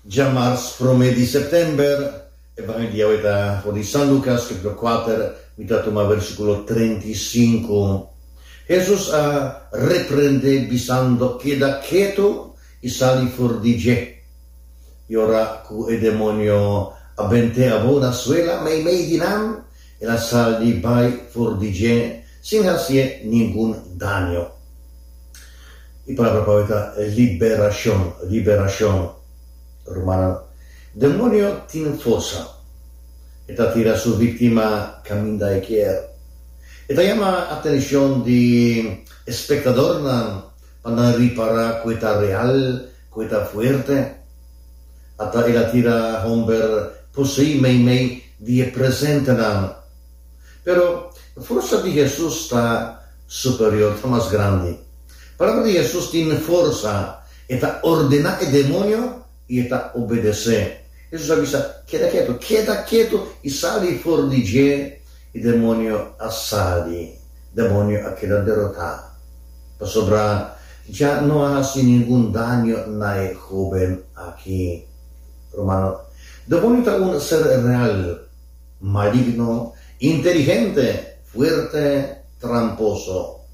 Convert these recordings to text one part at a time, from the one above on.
Dja mars prome di september, e ban e dia awé ta for di San Lucas, capitulo kuater, mi ta tuma versikulo trenta i sinku. Hesus a reprendé bisando, Keda ketu i sali for di dje. I ora ku e demonio a bent'é abó na suela, meimei di nan, El a sal di bai for di dje sin hasié ningun daño. E palabra pa hoy ta liberashon, liberashon. Rumannan, demonio tin forsa. E ta tira su víktima kaminda e kier. E ta yama atenshon di e spektadornan pa nan ripará ku e ta real, ku e ta fuerte. Ata el a tira hòmber poseí meimei di e presente naman. Pero, e forsa di Hesus ta superior, ta mas grandi. Palabra di Hesus tin forsa, e ta ordená e demonio i e ta obedesé. Hesus a bisa, Keda ketu, keda ketu i sali for di dje, i demonio a sali, demonio a keda derotá. Pasobra dja no a hasi ningun daño na e hóben akí. Romano, do bonita un ser real, maligno, inteligente, fuerte, tramposo.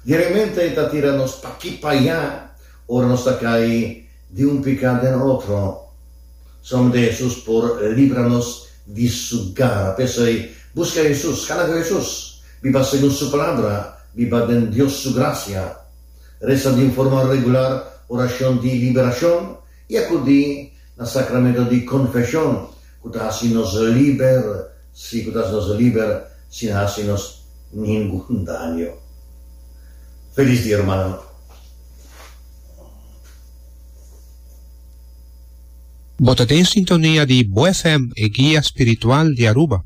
Di realmente ta tira nos p'aki p'aya ora nos ta cay di un pica den otro. Solamente Hesus por libra nos di su gara. P'esey, busca Hesus, cana cu Hesus, biba segun su Palabra, biba den Dios su gracia, reza di un forma regular oracion di liberacion, I akudí na sakramentu di konfeshon ku ta hasi nos liber, sí, ku ta hasi nos liber sin hasi nos ningun daño. Felis dia, rumannan! Bo ta den sintonia di Bo FM, e guia spiritual di Aruba.